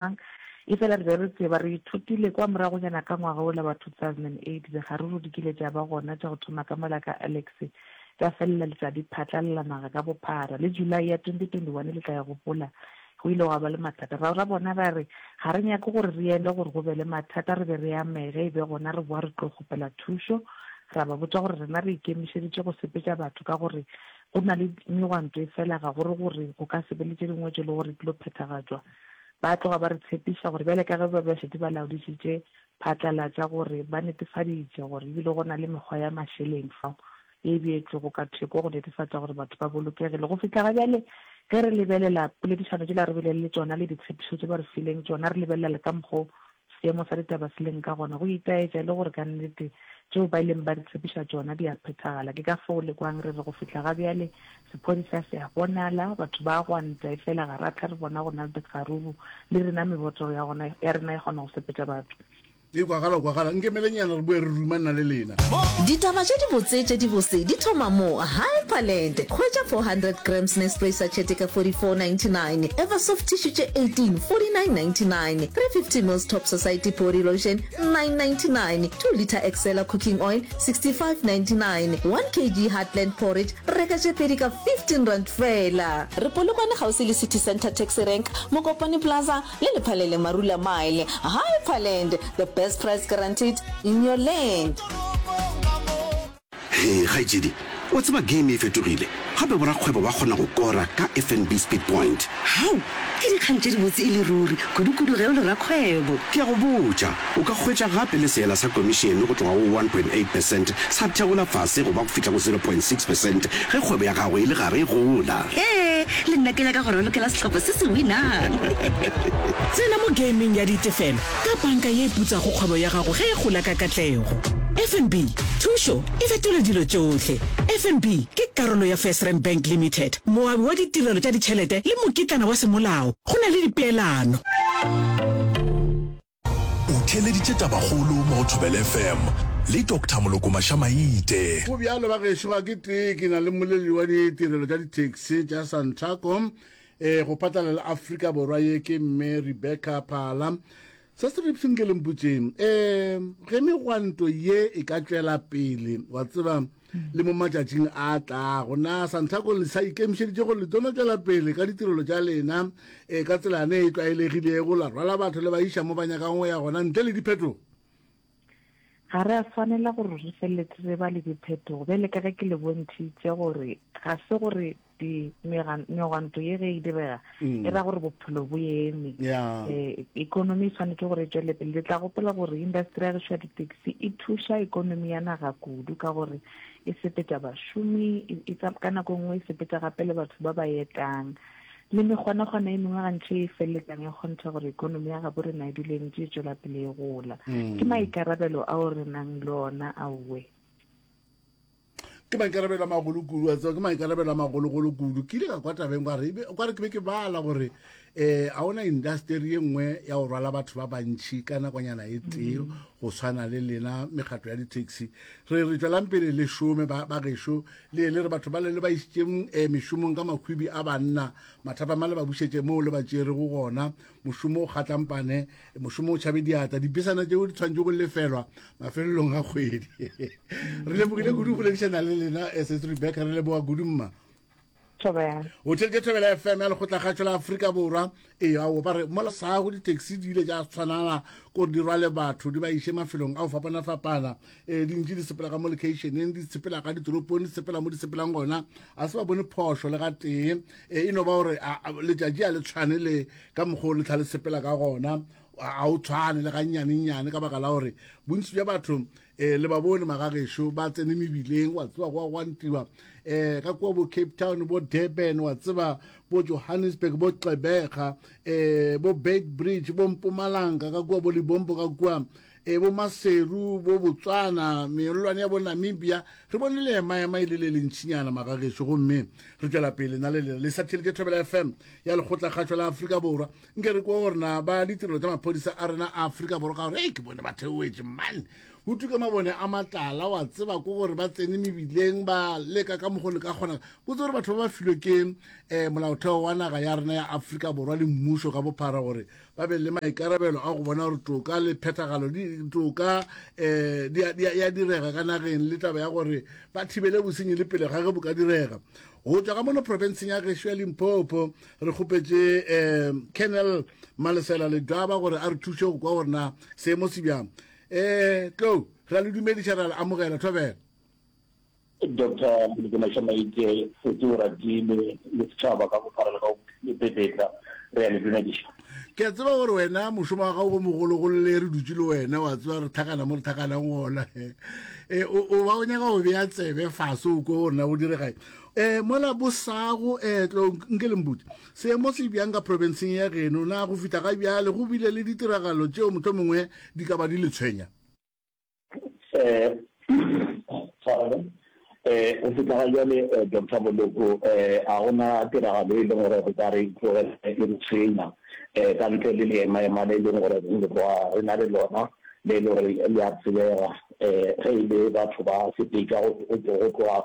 mang, efela re be re tseba, re ithutile kwa moragonyana ka ngwaga wola wa 2008, digaruru di kile tša ba gona tša go thoma ka mola ka Alex, tša felela le tša di phatlalala naga ka bophara. Le July ya 2021, le tla e gopola, go ile gwa ba le mathata. Ra bona ra re, ga re nyake gore re yele gore go be le mathata, re be re amege, e be gona re boa re tlo kgopela thušo, ra ba botša gore rena re ikemišeditše go sepetša batho ka gore go na le megwanto efela ga go re gore go ka se be le tše dingwe tše le gore di tlo phethagatšwa. Ba tloga ba re tshepiša gore bjale ka ge ba be ba šetše ba laodišitše phatlalatša gore ba netefaditše gore e bile go na le mekgwa ya mašeleng fao e beetšwego ka theko go netefatša gore batho ba bolokegile. Go fihla ga bjale ge re lebelela poledišano tšela re bile le tšona le ditshepišo tše ba re fileng tšona, re lebelela le ka mokgwa o Seemo sa ditaba se leng ka gona go itaetša e le gore ka nnete tšeo ba ileng ba re tshepiša tšona di a phethagala. Ke ka fao le kwang re re go fihla ga bjale sephodisa se a bonala, batho ba a gwanta, efela ga ra hlwa re bona go na le dikgaruru, le rena meboto ya gona ya rena e kgona go sepetša batho. Ee, kwagala, kwagala. Nkemelenyana re boe re ruma nna le lena. Ditaba tše dibotse tše dibose di thoma mo. Hyperland, Hwetša 400 grams Nespresso Sachete ka 44.99, Eversoft Tissue tše 18, 49.99. 350 mils Top Society Body Lotion, 9.99, 2 litre Excella Cooking Oil, 65.99, 1 kg Heartland Porridge, reka tše pedi ka R15 feela. Re Polokwane kgauswi le City Centre Taxi Rank, Mokopane Plaza le Lephalele Marula Mile. Hyperland, the best price guaranteed in your land. Hee kgaetšedi, wa tseba game e fetogile, gape borakgwebo ba kgona go kora ka FNB Speed Point. Hau! Ke dikgang tše dibotse e le ruri, kudukudu ge o le rakgwebo. Ke a go botša, o ka hwetša gape le seela sa komišene go tloga go one point eight percent sa theola fase go ba go fihla go zero point six percent ge kgwebo ya gago e le gare e gola. Hee, le nna ke nyaka go ralokela sehlopha se se winang. Tsena mo gaming ya ditefelo ka banka ye e putsago kgwebo ya gago ge e gola ka katlego. FNB, Thušo e fetola dilo tšohle. FNB ke karolo ya FirstRand Bank Limited, moabi wa ditirelo tša ditšhelete le mokitlana wa semolao go na le dipeelano. O theeleditše tabakgolo mo go Thobela FM le Doctor Molokomasha Maite. Go bjalo bagešo, ga ke tee ke na le moleleli wa ditirelo tša di-taxi tša Santaco E go phatlalela Afrika Borwa ye ke mme Rebecca Phala. Se se ripseng ke lemputseng e ge megwanto ye e ka tšwela pele wa tseba le mo matšatšing a tlago na santaco le sa ikemišeditše gore le tono tšwela pele ka ditirelo tša lena e ka tselane e tlwaelegilego la rwala batho le ba iša mo ba nyakang go ya gona ntle le diphetogo Ga re a swanela gore re feleletse re ba le diphetogo, bjale ka ge ke le bontšhitše gore ga se gore megwanto ye ge e direga mm. e ra gore bophelo bo eme eh, economy e tshwanetse gore e tswele pele le tla gopela gore industry ya gešo ya ditaxi e thuša economy ya naga kudu ka gore e sepetša bašomi e, e ka nako e nngwe e sepetša gape le batho ba ba etang Le megwanagwana e mengwe gantši e feleletsang e kgontha gore ekonomi ya gabo rena e dule ntse e tswela pele e gola. Mm. Ke maikarabelo ao re nang le ona aowe. ke maikarabelo a magolo kudu a tseba ke maikarabelo a magologolo kudu ke ile ka kwa tabeng kware kware ke be ke bala gore um a ona industeri ye nngwe ya go rwala batho ba bantšhi ka nakonyana e tee mm. go tshwana le lena mekgatlo ya di-taxi re re tswelang pele le šome ba gešo le le re batho ba le le ba isitseng eh, mešomong ka makhwibi a banna mathapama le ba bušetše moo le ba tšere go gona mošomo o kgatlampane mošomo o tšhabe diata dipesana tšeo di tshwantše go lefelwa mafelelong a kgwedi re lebogile kudu go boledišana le lena eh, setse rebecca re leboga kudu mma o theletše thobela fm ya lekgotla kgatšho la aforika borwa Ee, ao ba re mola sago ditaxi di ile ja tshwanana gore di rwale batho di ba iše mafelong a go fapana-fapana um dintši di sepela ka mo locationeng di sepela ka ditoropong di sepela mo di sepelang gona a se ba bone phošo le ga tee um e no ba gore letšatši a le tshwane le ka mokgwa o letlha le sepela ka gona ga o tshwane le ga nnyane-nnyane ka baka la gore bontsi bja batho e le ba bone magagesho ba tsene mebileng wa tseba go a gwantiwa um ka kua bo cape town bo durban wa tseba bo johannesburg bo xebega um bo bait bridge bo mpomalanga ka kua bo libombo ka kua um bo maseru bo botswana meolwane ya bo namibia re bone le emaema e le le lentšhinyana magagesho gomme re tšwela pele na le lena le sathelete thobela fm ya lekgotlakgašo la afrika borwa nke re kwa gore na ba ditirelo tsa maphodisa a rena a aforika borwa ka gore e ke bone ba theoetse mane go tuke mabone a matlala wa tseba ko gore ba tsene mebileng ba leka ka mogolo ka kgona ko tse gore batho ba ba filwe ke um molaotheo wa naga ya rena ya aforika borwa le mmuso ka bophara gore ba be le maikarabelo a go bona gore toka le phethagalo toka um ya direga ka nageng le taba ya gore ba thibele bosenyi le pele ga ge bo ka direga go tswa ka mono profenseng ya gešo ya limpopo re kgopetše um kennel malesela ledwaba gore a re thuše go kwa gore na seemo se bjang um eh, tlo ra le dumediša ra le amogela thobela dr mdinashamaike foti o ratile le setšhaba ka bophara le ka lepepetla re ya le dumediša ke a tseba gore wena mošomo wa gago go mogolo go le re dutse le wena wa tseba re thakana mo re thakanang gona e, o ba o nyaka go bea tsebe fase o ko gore na go diregae Eh, mola bosago, eh, tlo, nke le mputse. Seemo se bjang ka profenseng ya geno, na go fihla ga bjale go bile le ditiragalo tšeo mohlomongwe di ka ba di le tshwenya? Eh, tshwarelo. Eh, go fihla ga bjale, eh, Doctor Moloko, eh, ga go na tiragalo e leng gore re ka re tlogela e re tshwenya, eh, ka ntle le leemaema le e leng gore re go re na le lona, le e le gore le a tsebega, eh, ge e le batho ba sepetša go, go, go tloga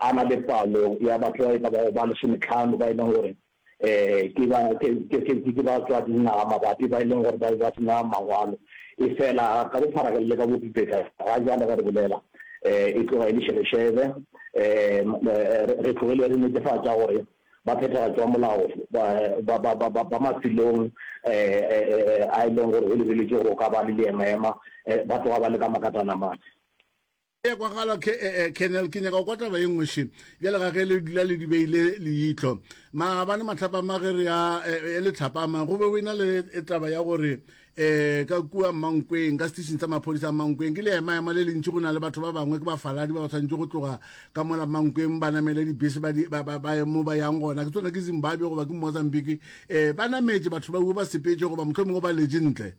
A na le palo ya batho ba e ka bago ba lesometlhano ba e leng gore ke batswadingwaga mabapi ba e leng gore ba be ba se na mangwalo. Efela ka bopharageng le ka bopipetla, ga jalo ge re bolela, e tloga e le šebešebe. Re tlogile re netefatša gore baphethagatši ba molao ba mafelong a e leng gore go lebeletšwe gore go ka ba le leemaema ba tloga ba le ka makatana mane. ya kwagala kennel ke nyaka go kwa taba ye nngwe še bjale ga ge le dula le di beile leitlo maabane matlhapama ge re ya e le tlhapama go be go ena le taba ya gore um ka kua mankweng ka station sa maphodisa mankweng ke le emaema le lentši go na le batho ba bangwe ke bafaladi ba ba tshwanetse go tloga ka mola mankweng ba namele dibese mo ba yang gona ke tsona ke zimbabwe goba ke mozambique um ba nametse batho ba ue ba sepetse goba motlho mongwe ba lejentle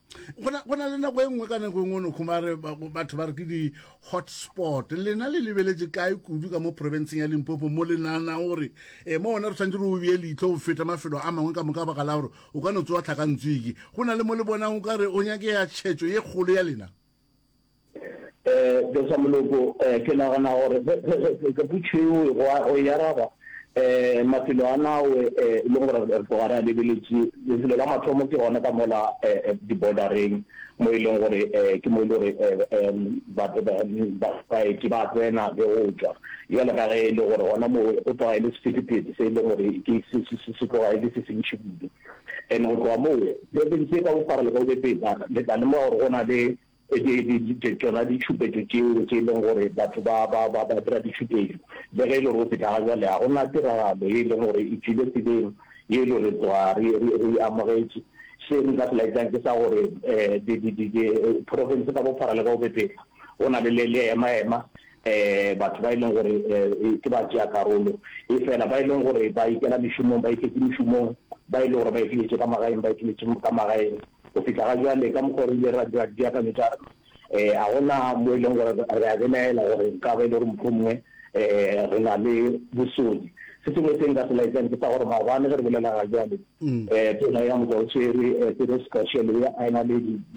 go na le nako e nngwe ka nako e nngwe no khumare batho ba re ke di-hotspot lena le lebeletse kae kudu ka mo provinceng ya limpopo mo le naana gore e mo one re tshwanetse re o bee leitlho go feta mafelo a mangwe ka moka baka la gore o ka no tsewa tlhakantsweke go na le mo le bonang o ka re o nyake ya tšhetso ye kgolo ya lena Eh, Besa Moloko, eh, ke nagana gore ge- ge- ge- ge- ge putšo eo e go a- o e araba, eh, mafelo a nawe, eh, e leng gore re re tloga re a lebeletše, lefelo la mathomo ke gona ka mola, eh, eh, di-border-reng, mo e leng gore, eh, ke mo e le gore, eh, em, ba- ba- ba- ba- baeti ba tsena le go tšwa. Bjale ka ge e le gore gona moo go tloga e le sephethephethe se e leng gore ke se- se- se- se tloga e le se sentši kudu. And go tloga moo, profense ye ka bophara le ka bobepetsa le tla lemoga gore go na le tšona ditšhupetšo tšeo tše e leng gore batho ba dira ditšhupetšo. Le ge e le gore go fihla ga bjale ga go na tiragalo ye e leng gore e tswile tseleng ye e lego re tloga re e amogetše. Se nka se laetsang ke sa gore profense ka bophara le ka bobepetsa go na le le emaema. batho ba e leng gore ke batšeakarolo, efela ba e leng gore ba ikela mešomong, ba iketse mešomong, ba e lego gore ba ikiletše ka magaeng, ba ikiletše ka magaeng. Go fihla ga bjale, ka mokgwa o re ile ra dira dipeakanyo tša rena, ga go na mo e leng gore re a belaela gore nka ba e le gore mohlomongwe re na le bosodi. Se sengwe se nka se laetsang ke sa gore maabane ge re bolela ga bjale, tona ya Mojaotshwere, Petros Gashel, a e na le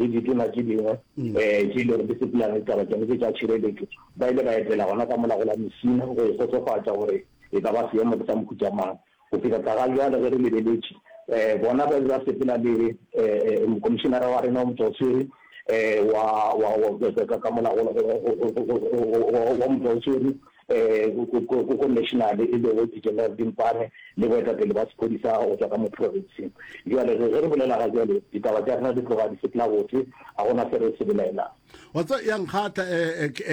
ditona tše dingwe, tše e lego di sepela le ditaba tša tša tšhireletšo, ba ile ba etela gona ka mola go la Messina go ikgotsofatša gore e ka ba seemo ke sa mohuta mang. Go fihla tagabjale ge re lebeletše, bona ba be ba sepela le Mokomišenara wa rena wa Motšwaoswere wa ka mola go wa Motšwaoswere, go go national e lego General Dimpane le boetapele ba sephodisa go tšwa ka mo province. Bjale ge re bolela ga bjale ditaba tša rena di tloga di sepela botse, ga go na se re se belaelang. Wa tseba ya nkgatha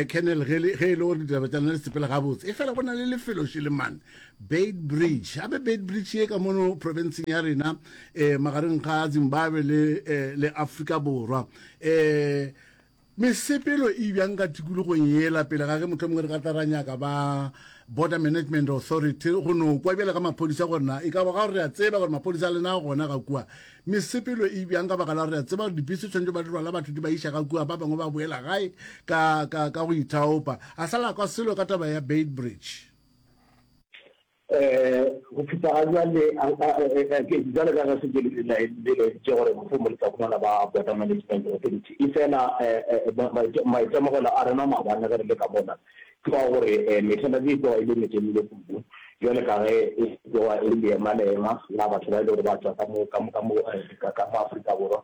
Colonel ge e le gore ditaba tša lena di sepela gabotse, e fela go na le lefelo šele mane Beitbridge. Gape Beitbridge ye ka mono provinceng ya rena magareng ga Zimbabwe le Afrika Borwa. Mesepelo e bjanga tikologong yela pele ga ge mohlomongwe re ka tla ra nyaka ba Border Management Authority go no kwa bjale ga maphodisa gore na e ka ba ga gore re a tseba gore maphodisa a lena gona ga kua. Mesepelo e bjang ka baka la gore re a tseba gore dibese tshwanetse ba di rwala batho di ba iša ga kua ba bangwe ba boela gae ka, ka, ka go ithaopa. A sa la kwa selo ka taba ya Beitbridge. Go fihla ga bjale, bjalo ka ge Setšo le laeditše gore mohlomong le tla humana ba Border Management Authority, efela maitemogelo a rena maabane ge re le ka mona ke wa gore mehla e tloga e le metelele kudu, bjalo ka ge e tloga e le leemaleema la batho ba e lego gore ba tšwa ka mo Afrika Borwa.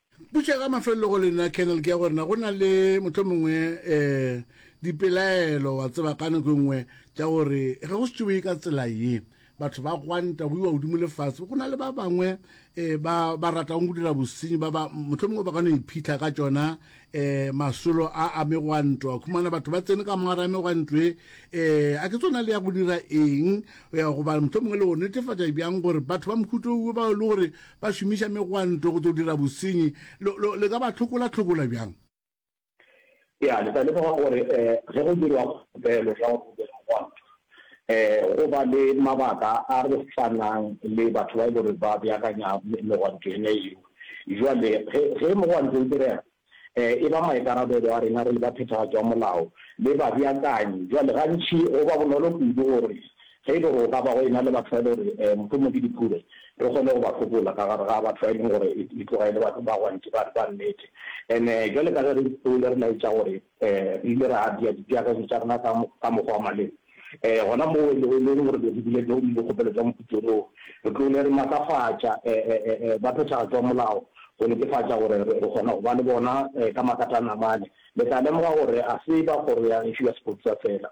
Potšo ya ka mafelelo go lena Colonel ke ya gore na go na le motho mongwe um dipelaelo wa tseba ka nako e nngwe tša gore ge go setšoe ka tsela ye batho ba gwanta go iwa godimo lefatshe go na le ba bangwe um ba ba ratang go dira bosenyi ba ba motho mongwe ba ka no iphitlha ka tšona um masolo a a megwanto a khumana batho ba tsene ka mogare a megwanto e um a ke tsona le ya go dira eng ya goba motho mongwe le go netefatša bjang gore batho ba mohuto uwe ba e le gore Ba šomiša megwanto go tlo dira bosenyi. Lo, lo, le ka ba tlhokola-tlhokola bjang? Ya, le tla lemoga gore e, ge go dirwa kgopelo ya gore go be le mogwanto, e, go ba le mabaka a re swanang le batho ba e le gore ba beakanya megwanto yona yeo. Bjale, ge, ge mogwanto o direga, e ba maikarabelo a rena re le baphethagatši ba molao le babeakanyi. Bjale, gantši go ba bonolo kudu gore ge e le gore go ka ba go ena le batho ba e lego gore mohlomongwe ke diphube, re kgone go ba hlokola ka gare ga batho ba e leng gore e tloga e le batho ba gwantši ba nnete. And-e bjale ka ge re ipsole re laetša gore Re ile ra bea dipeakanyo tša rena ka, ka mokgwa wa maleba. Ee, gona moo e lego, e lego gore be re bile teng dikgopelo tša moputso woo, re tlogile re matlafatša ba phethagatšo ya molao go netefatša gore re, re kgona go ba le bona ka makatana mane. Le tla lemoga gore ga se ba Kgoro ya Gešo ya Sepodisa feela.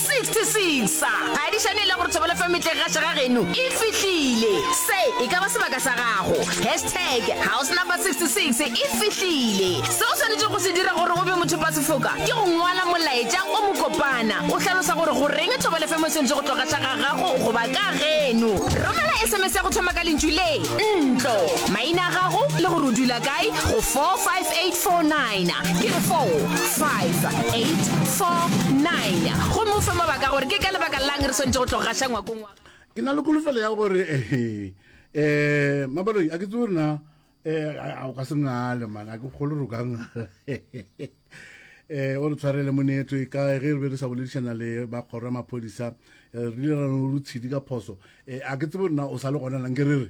66 sa ga di šane le gore thobelo fm metleng ga šega geno e fihlile se e ka ba sebaka sa gago hashtag house number 66 e fihlile se o swanetše go se dira gore o be mothopasefoka ke go ngwala molaetša o mokopana o hlalosa gore goreng thobelo fm e swanetše go tloga xa ga gago goba ka geno romela sms ya go thoma ka lentšu le ntlo maina a gago le gore o dula kae go 45849 ke re 45849 Nanya. Gomme o fe mabaka a gore ke ka lebaka lang re swanetše go tlo gaša ngwakong wa Ke na le kolofelo ya gore um mabaloi a ke tse rena um o ka se ngale mana ke kgolo re o ka ngala um o re tshwarele moneto e kae ge re be re sa boledišana le ba kgoro ya maphodisa re ile ra no rutshidi ka phoso um a ke tsebo nna o sa le gona nang ke re re